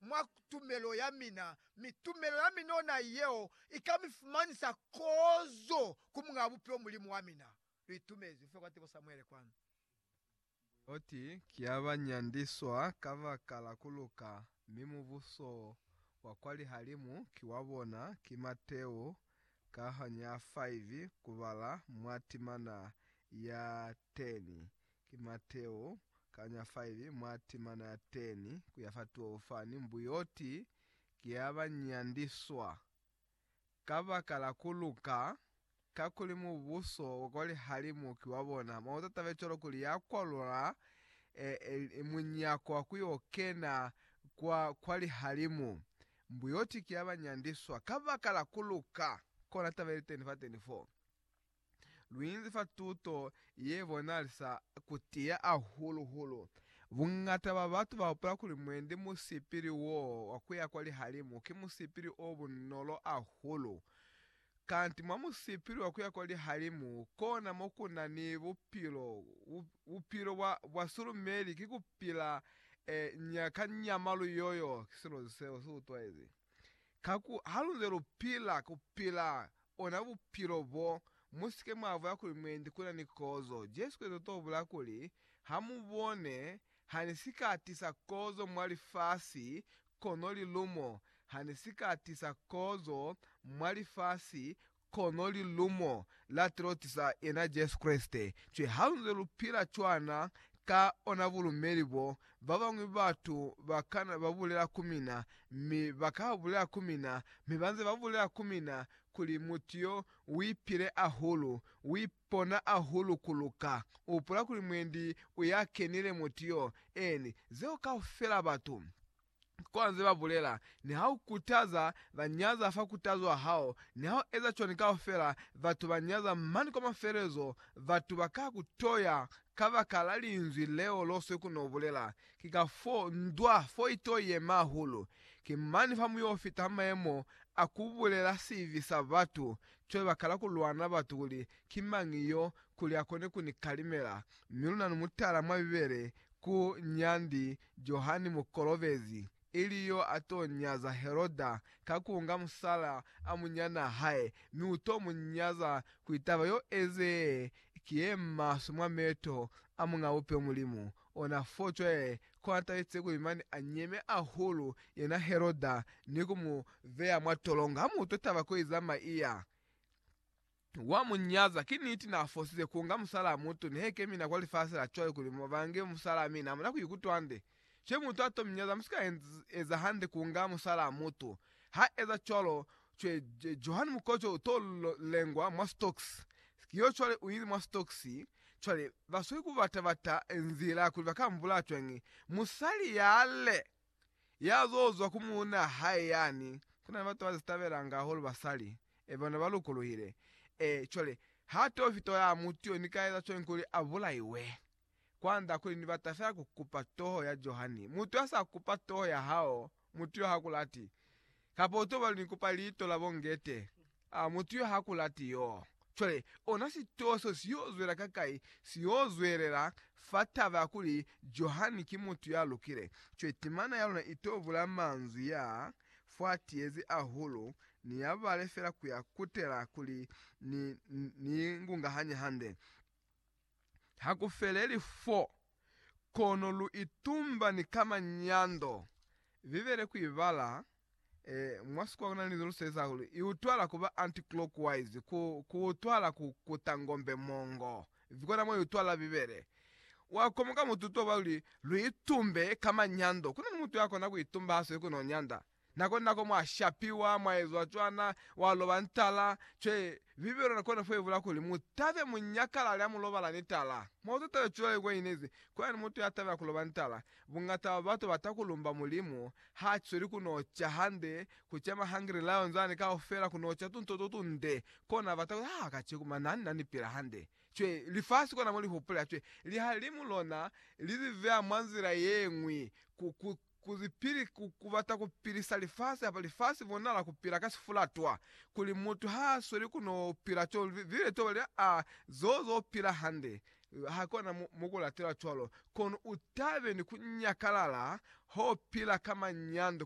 mwa tumelo ya mina, mi tumelo ya mina ona yeo ika mi fumanisa kozo ku Muñaa Bupilo Mulimu wa mina. Lu itumezi kufita kwa tebo Samuele kwanu. Loti ki ya ba nyandiswa kabaka la ku luka, mi mubuso wa kwa lihalimu ki wa bona, ki Mateo kahanya 5 kubala mwa timana ya 10 Ki Mateo, kanya 5 mwa timana ya 10 ku ya fa 12 fani, mbuyoti ki ya ba nyandiswa kabaka la ku luka, kakuli mubuso wa kwa lihalimu ki wa bona. Mauta tabe cwalo kuli ya kwalula e, e, e munyako wa ku yo kena kwa, kwa lihalimu, mbuyoti ki ya ba nyandiswa kabaka la ku luka. Kona taba ili teni fa 24. Luinzi fa tuto ye bonalisa ku tiya ahulu hulu. Bungata ba batu ba hupula kuli mwendi musipili wo wa kuya kwa lihalimu ki musipili o bunolo ahulu. Kanti mwa musipili wa kuya kwa lihalimu kona mo ku na ni bupilo. Bupilo bwa bwa sulumeli ki ku pila e nya ka nyama lu yoyo ki silo seo si utwaizi. Ka ku haluze lu pila, ku pila ona bupilo bo. Mu si ke mwa bulela kuli, Mwendi, ku na ni kozo. Jesu Kreste to bulela kuli, Ha mu bone, ha ni si ka tisa kozo mwa lifasi, kono lilumo. Ha ni si ka tisa kozo mwa lifasi, Kono lilumo la Troti sa yena Jesu Kreste, cwi halunze lupila cwana ka ona bulumeli bo, babañwi batu bakana babulela ku mina, mi baka bulela ku mina, mi banze babulela ku mina, kuli, Mutu yo uipile ahulu, uipona ahulu kuluka. Upula kuli mwendi uyakenile mutu yo, eni, zeo kaufela batu. kwa nze ba bulela, Niha u kutaza ba nyaza fa kutazo wa hao, niha u eza cwani kaufela batu ba nyaza, mane kwa mafelezo batu ba ka ku toya kabaka la linzwi leo lo swe ku no bulela. Ki ka fo ndwa fo i to yema hahulu. Ki mane fa mu yo fita ha mayemo a ku bulela sibi sa batu, cwale ba kala ku lwana batu kuli ki mañi yo, kuli a kone ku ni kalimela. Mi luna ni mutala mwa Bibele ku nyandi Johani Mukolobezi, ili yo a to nyaza Heroda ka ku nga musala a munyana hae, mi u to mu nyaza kuli taba yo eze ye ki ye maswe mwa meto a Muñ'a Bupe Mulimu. Ona fo cwale kona tabize kuli mane a nyeme ahulu yena Heroda ni ku mu beya mwa tolongo ha mu utwa taba ko iza maiya. Wa mu nyaza. Ki niti na fosize ku nga musalaa mutu, ni he kemina kwa lifasi la cwale kuli mu bange musalaa mi na muna ku ikutwa hande. She mutu a to mi nyaza, mu si ka eza hande ku nga musalaa mutu. Ha eza cwalo, cwe, Johani Mukoco u to lengwa mwa sitokisi. Ki yo cwale u ili mwa sitokisi. Cwale, ba sweli ku bata-bata nzila kuli ba ka mbulaa cwañi. Musali yale! ya zo zwa ku muuna hae yani, kuna ni batu ba zi tabelanga hahulu basali, e bona ba lukuluhile, e, cwale ha to fito ya mutu yo, ni ka eza cwañi kuli a bulaiwe? Kwand'a kuli ni bata fela ku kupa toho ya Johani. Mutu ya sa kupa toho ya hao, mutu yo ha ku lati, kapa u tobali ni kupa liito la bo Ngete, A mutu yo ha ku lati yo? Cwale, ona sitowa so si yo zwela ka kai, si yo zwelela fa taba ya kuli Johani ki mutu ya lukile. Cwale timana ya luna i to bula manzwi ya fa tiezi hahulu, ni ya bale fela ku ya kutela kuli ni, ni, ni i ngungahanye hande. ha ku feleli fo, kono lu itumba ni ka manyando. Bibele ku i bala e, mwa sikwa ku na ni linzwi lu sebeza hahulu, i utwahala ku ba anti-clockwise, ku, ku utwahala ku kuta ngombe mongo. Kona mo i utwahala Bibele. Wa komoka mututo wa luli, lu itumbe ka manyando. Ku na ni mutu ya kona ku itumba ha sweli ku n'o nyanda. Na kona nako mwa shapiwa, mwa ezwa cwana, wa loba ni tala. Cwe, Bibele na kona kuebula kuli, Mu tabe mu nyakalale ha mu lobala ni tala. Mwa uta taba cwale kwa inezi, Kwani mutu ya tabela ku loba ni tala. Bungata bwa batu ba ta ku lumba Mulimu. Ha cweli ku no ca hande, ku ca ma Hungry Lions ani kaufela, ku no ca tunto to tunde. Kona bata kuli, Haa, kaceku mwa nani na ni pila hande. Cwe, lifasi kona mo li hupulela. Cwe, lihalimu lona li li beha mwa nzila yeñwi, ku, ku, Kuli pili ku kubata ku pilisa lifasi hapa lifasi bonala ku pila ka sifulatwa, kuli mutu ha sweli ku no pila co bile to bali a zozo u pila hande, ha kona mu, mu ku latela cwalo, kono u tabe ni ku nyakalala ho pila ka manyando.